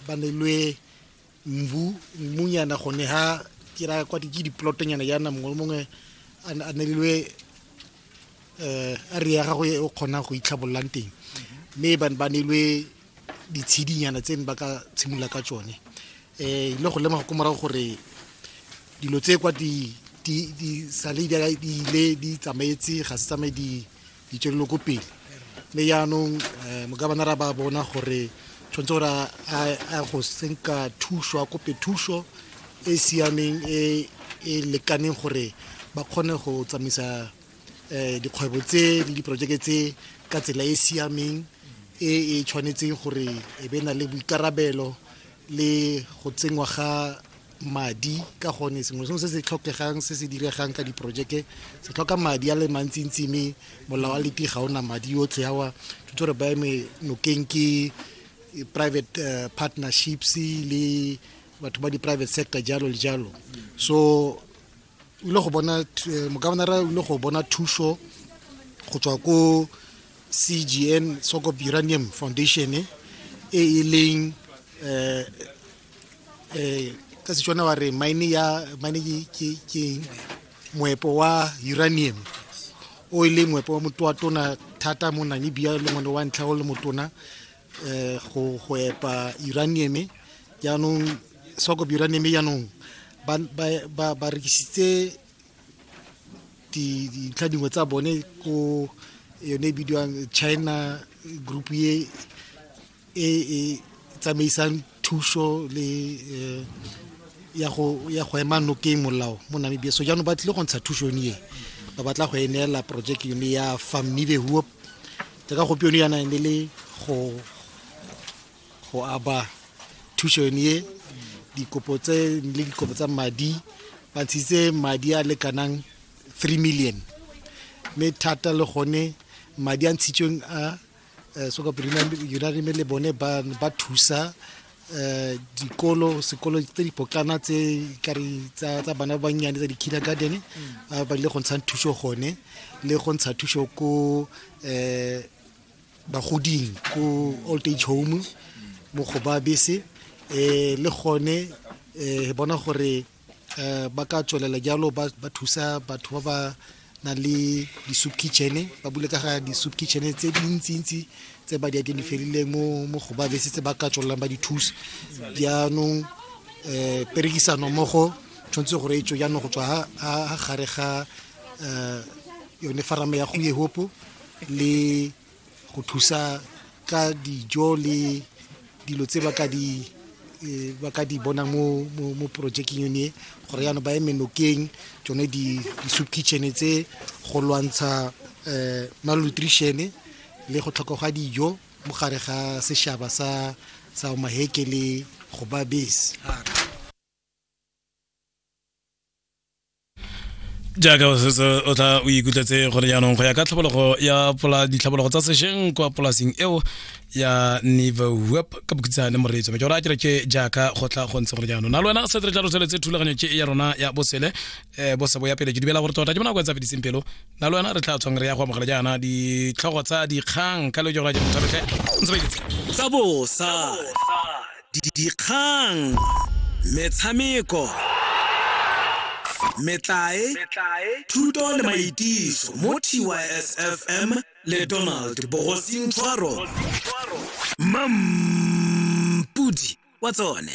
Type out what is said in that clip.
ba nelwe mbu mmunyana gone ha ke ra kwa ke diplotonyana yana mongwe le mongwe a nelilwe um eh, a re ya gago e o kgonang go itlhabololang teng mme ba ba nelwe ditshidinyana tse ne ba ka tshimolola ka tsone um eh, ile go lemoga ko morago gore dilo tse kwa di sale di ile di tsamaetse ga se tsamaye di di tšerilwe ko pele mme yaanong um mokabanara ba bona gore tshwanetse gore a go senka thuso a kope thuso e siameng e e lekaneng gore ba kgone go tsamaisa um dikgwebo tse le diporojeke tse ka tsela e e siameng e e tshwanetseng gore e be na le boikarabelo le go tsenngwa ga madi ka gone sengwe sengwe se se tlhokegang se se diregang ka diporojeke se tlhoka madi a le mantsintsi mme molao a leti ga ona madi yotlhe awa tshwanetse gore ba eme nokeng ke eh, private uh, partnerships le batho ba di-private sector jalo le jalo so o ile go bona eh, mokabanara o ile go bona thuso go tswa ko cgn socop uranium foundation e e leng um eh ka setswana wa re mine ya mine ke ke moepo wa uranium o e leng moepo wa motho wa tona thata mo namibia le mone wa ntlha o le motona um go go epa uranium jaanong soko uranium jaanong ba rekisitse dintlha dingwe tsa bone ko yone e bidiwang china group ye e e tsamaisang thuso le eh, ya go ya go ema nokeng molao mo namibia so jaanong ba tlile go ntsha thuso yone e ba batla go e neela project yone ya famile huop jaaka gopi yone yana ne le go go aba thuso yone e dikopo tse le dikopo tsa madi ba ntshitse madi a lekanang 3 million mme thata le gone madi a ntshitsweng a eh, so yunari me le bone ba ba thusa eh dikolo sekolo tse di potlana tse kare tsa tsa bana ba bannyane tsa di kindergarten mm. ba le go ntshang thuso gone le go ntsha thuso ko eh bagoding ko old age home mo go ba bese eh le gone eh bona gore um ba ka tswelela jalo ba thusa batho ba ba na le di-soup kitchen ba bule ka ga di-soup kitchen tse dintsintsi tse ba di identifierileng mo mo go ba bese tse ba ka tswelelang ba di thusa jaanong um perekisano mmogo tshwanetse gore e tswe jaanong go tswa ga gare ga um yone farame ya go yehopo le go thusa ka dijo le dilo tse ba ka di eh, ba ka di bonang mo mo, mo projecting yone e, gore yana ba eme nokeng tsone di di soup kitchen tse go lwantsha eh malnutrition le go tlhoka ga dijo mo gare ga seshaba sa sa maheke le go ba base jaaka o setse o tla o ikutletse gore jaanong go ya ka tlhabologo ya ditlhabologo tsa sešeng kwa polasing eo ya niveweb ka bokhutsa le moreetso me ke gore a kere ke jaaka go tla go ntse gore jaanong na le wena se tle tla re tsweletse thulaganyo ke ya rona ya bosele um bosebo ya pele ke dibela gore tota ke bona go etsa fediseng pelo na le wena re tla tshwang re ya go amogela jaana ditlhogo tsa dikgang ka le ke gore a ke mothabetlhe ntse ba iketse tsa bosa dikgang, metshameko, metlae, thuto le maitiso mo TYSFM le Donald Bogosing Tshwaro. Mampudi wa tsone.